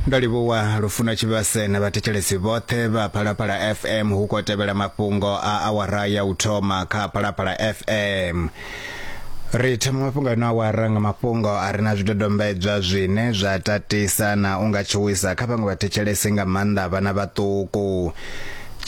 ndo livhuwa lufuno tshivhase na vhathetshelesi vhoṱhe vha phalaphala fm hu khou tevhela mafhungo a awara ya u thoma kha phalaphala fm ri thoma mafhungo ano awara nga mafhungo a re na zwidodombedzwa zwine zwa tatisa na u nga tshuwisa kha vhaṅwe vhathetshelesi nga maanḓa vhana vhaṱuku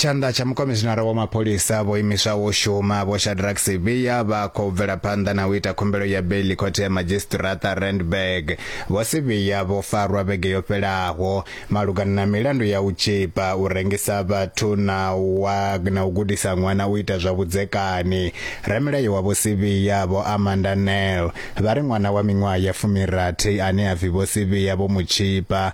Tshanḓa tsha mukomishinara wa mapholisa vho imiswaho u shuma Vho Shadrack Sibiya vha khou bvela phanḓa na u ita khumbelo ya beiḽi khothe ya madzhisiṱiraṱa Randburg. Vho Sibiya vho farwa vhege yo fhelaho malugana na milandu ya u tzhipa, u rengisa vhathu na u wa na u gudisa ṅwana u ita zwa vhudzekani. Ramilayo wa Vho Sibiya Vho Amanda Nel vha ri ṅwana wa miṅwaha ya fumi rathi ane a pfi Vho Sibiya vho mu tzhipa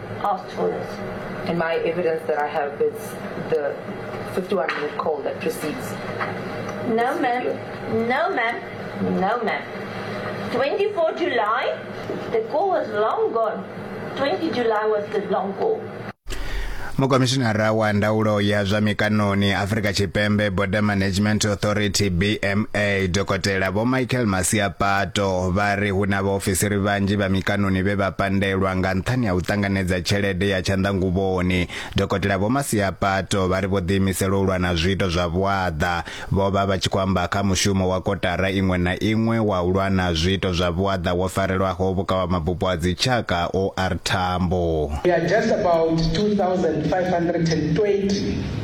Mukomishinara wa ndaulo ya zwa mikaṋoni Afrika Tshipembe Border Management Authority BMA Dokotela Vho Michael Masiapato vha ri hu na vhaofisiri vhanzhi vha mikaṋoni vhe vha pandelwa nga nṱhani ha u ṱanganedza tshelede ya tshanḓanguvhoni. Dokotela Vho Masiapato vha ri vho ḓiimisela u lwa na zwiito zwa vhuaḓa. Vho vha vha tshi khou amba kha mushumo wa kotara iṅwe na iṅwe wa u lwa na zwiito zwa vhuaḓa wo farelwaho vhukavhamabupo ha dzitshaka OR Tambo. We are just about 2520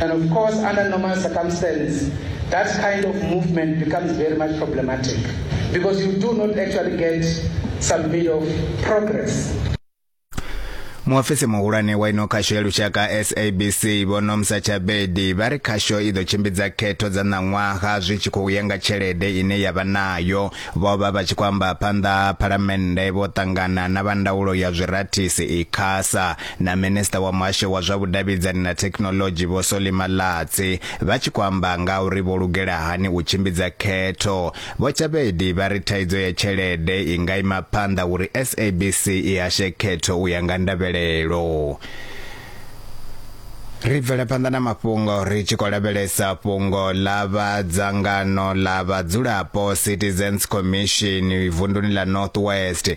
And of course, under normal circumstances, that kind of movement becomes very much problematic because you do not actually get some bit of progress. muofisi muhulwane wa ino khasho ya lushaka sabc vhonomsa tshabedi vha ri khasho i ḓo tshimbidza khetho dza ṋaṅwaha zwi tshi khou ya nga tshelede ine ya vha nayo vho vha vha tshi khou amba phanḓa ha phalamennde vho ṱangana na vha ndaulo ya zwirathisi ikhasa na minista wa muhasho wa zwa vhudavhidzani na thekhinolodzhi vho Solly Malatsi vha tshi khou amba nga uri vho lugela hani u tshimbidza khetho. Vho Chabedi vha ri thaidzo ya tshelede i nga ima phanḓa uri SABC i hashe khetho u ya nga ndavhelelo. ri bvela phanḓa na mafhungo ri tshi khou lavhelesa fhungo ḽa vha dzangano ḽa vhadzulapo citizens commission vunduni ḽa north west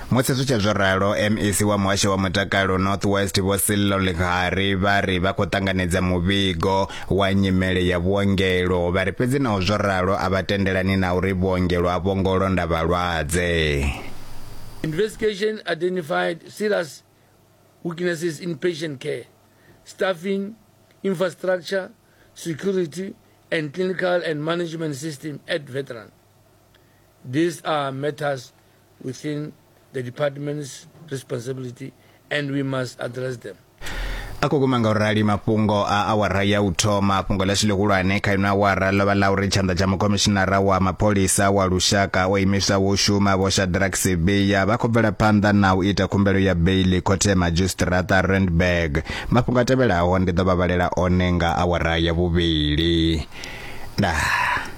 Musi zwi tshe zwo ralo, MEC wa Muhasho wa Mutakalo North West Vho Sello Lekgari vha ri vha khou ṱanganedza muvhigo wa nyimele ya vhuongelo, vha ri fhedzi naho zwo ralo a vha tendelani na uri vhuongelo a vho ngo londa vhalwadze. Investigation identified serious weaknesses in patient care, staffing, infrastructure, security and clinical and management system at Veteran. These are matters within the department's responsibility and we must address them. a khou guma nga u rali mafhungo a awara ya u thoma fhungo ḽashu ḽihulwane kha ino awara ḽo vha ḽa uri tshanḓa tsha mukhomishinara wa mapholisa wa lushaka o imiswaho u shuma vho shadrack sebeya vha khou bvela phanḓa na u ita khumbelo ya beili khothe madzhisitirata randburg mafhungo a tevhelaho ndi ḓo vha vhalela one nga awara ya vhuvhili ndaa